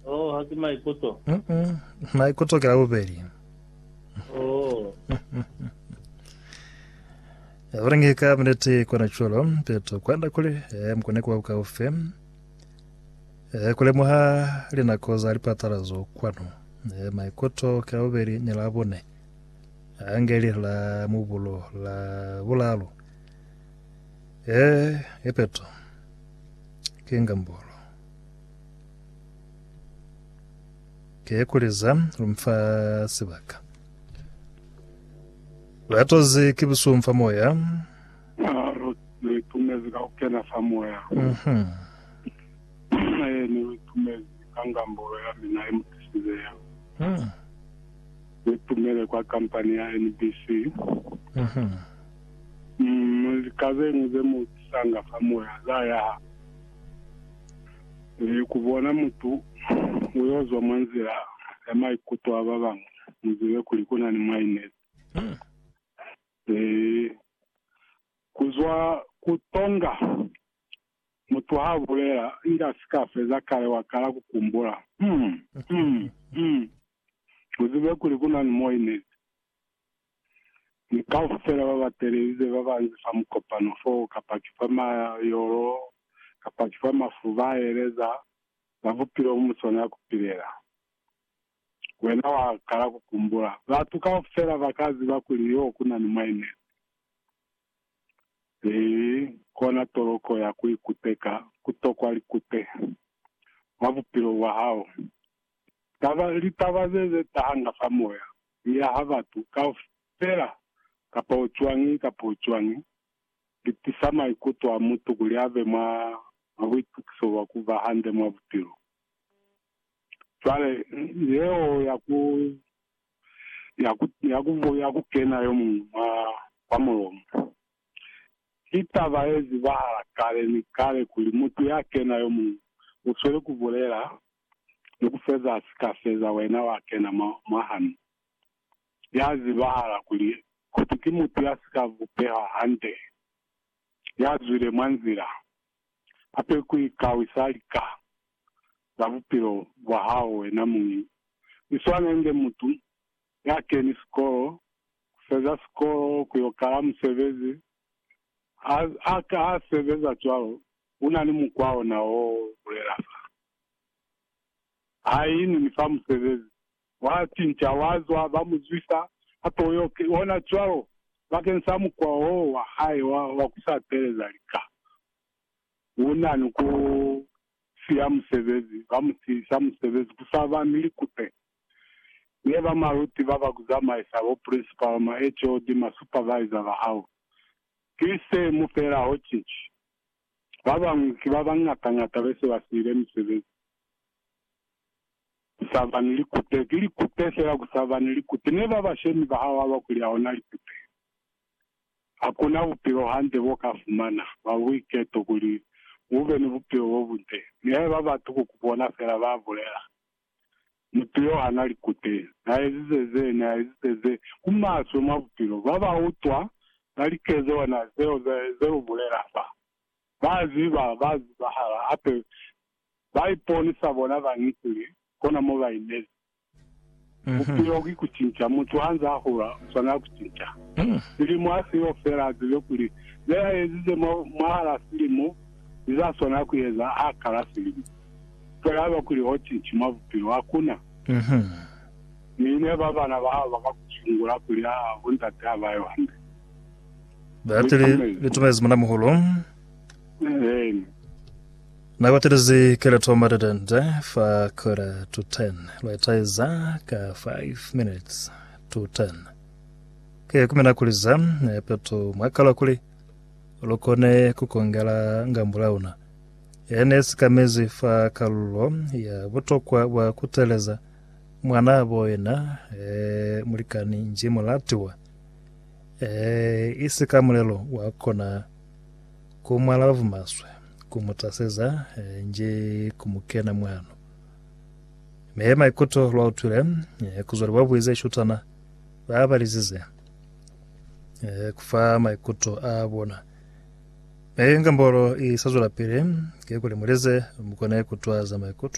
Oh, ha ki maikuto. Mm -mm. Maikuto ke la bubeli. Oh. Abarengi ka mnete kona chulo peto kwanda kuli eh, mkone kuwa bukaufe eh, kulemuha linako za lipatala zo kwanu eh, maikuto ke la bubeli ni la bune angeli la mubulo la bulalu eh, epeto ke ngambolo Ke ku leza lu mfa sibaka. Lu atozi ki busuhu fa moya. Lu itumezi ka ku kena fa moya. Ee, ni lu itumezi ka ngambolo ya mina ye mu tisize yeo. Lu itumele kwa kampani ya NBC. Lika zeñwi ze mu tisanga fa moya za yaha. Ni ku bona mutu u yo zwa mwa nzila ya maikuto a ba bañwi, mu zibe kuli ku na ni mwainezi. Ni ku zwa ku tonga mutu ha bulela inge a si ka feza kale wa kala ku kumbula, Umm, umm, umm. Mu zibe kuli ku na ni mwainezi. Ni kaufela ba ba telelize ba banzi fa mukopano foo, kapa ki fa mayolo, kapa ki fa mafu, ba eleza za bupilo mu swanela ku pilela. Wena wa kala ku kumbula, batu kaufela ba ka ziba kuli yo ku na ni Mwainezi. Ki kona toloko ya ku ikuteka, ku tokwa likute, mwa bupilo bwa hao. Taba, litaba ze, ze tahanga fa moya, mi yaha batu kaufela, kapo cwañi, kapo cwañi, li tisa maikuto a mutu kuli abe mwa, mwa buitukiso bwa ku ba hande mwa bupilo. Cwale, yeo ya ku, ya ku, ya ku, ya ku kena yo muñwi mwa, mwa mulomo. Ki taba ye zibahala kale ni kale kuli mutu ya kena yo muñwi, u sweli ku bulela, ni ku feza ha si ka feza wena wa kena mwa, mwa hanu. Ya zibahala kuli, koti ki mutu ya si ka bupehwa hande, ya zwile mwa nzila, hape ku ikawisa lika za bupilo bwa hao wena muñi. I swana inge mutu ya keni sikolo, ku feza sikolo, ku yo kala musebezi, ha, ha, ha sebeza cwalo, una ni mukwa ona wo bulela fa. Ha ini ni fa musebezi, wa cinca, wa zwa, ba mu zwisa, hape u yo ona cwalo, bakeng sa mukwa wo wa hae wa, wa ku sa teeleza lika. U na ni ku siya musebezi, ba mu siyisa musebezi, ku sa ba ni likute. Ne ba maluti ba ba ku zamaisa, bo principal, ma HOD, ma supervisor ba hao. Ki se mu fela ho cici. Ba bañwi ki ba bañata-ñata be se ba siile misebezi. Ku sa ba ni likute. Ki likute fela ku sa ba ni likute. Ne ba bashemi ba hao haba kuli hauna likute. Ha ku na bupilo hande bo ka fumana, bwa buiketo, kuli u be ni bupilo bo bunde. Nihaiba batu ku ku bona fela, ba bulela. Mutu yo ha na li kute, na ezize ze, na ezize ze, ku maswe mwa bupilo. Ba ba utwa, ba like zona zeo ze, ze lu bulela fa. Ba ziba, ba zibahala, hape ba iponisa bona bañi kuli kona mo ba inezi. Bupilo ki ku cinca. Mutu ha nz'a hula, u swanela ku cinca. Silimo ha si yo fela, a zibe kuli ze a ezize mwa, mwahal'a silimo, li za swanela ku eza ha kala silimo. Fela haba kuli hoti nti mwa bupilo hakuna. Mi ne ba bana ba hao baka ku sungula kuli haa bo ndate haba yo hande. Batili litumezi muna muhulu. Eena. Na batelizi keleto matetende fa quarter to ten. Lwa itaiza ka five minutes to ten. Ke kumina kuliza nepeto mwa kalwa kuli lukone kukongela ngambo launa. Ye ne sikamezi fa kalulo ya butokwa bwa kuteleza mwanabo yena, e, mulikani nji mulatiwa. E, isi ka mulelo wa kona ku mwalavu maswe, ku mu taseza, e, nji ku mu kena mwano. Me maikuto lwa utwile, e, kuzwa li bwabuize shutana ba balizize, e, kufa maikuto a bona. Ee, nga mbolo i sa zwelapili, kikuli muleze mukone kutwa za maikutwa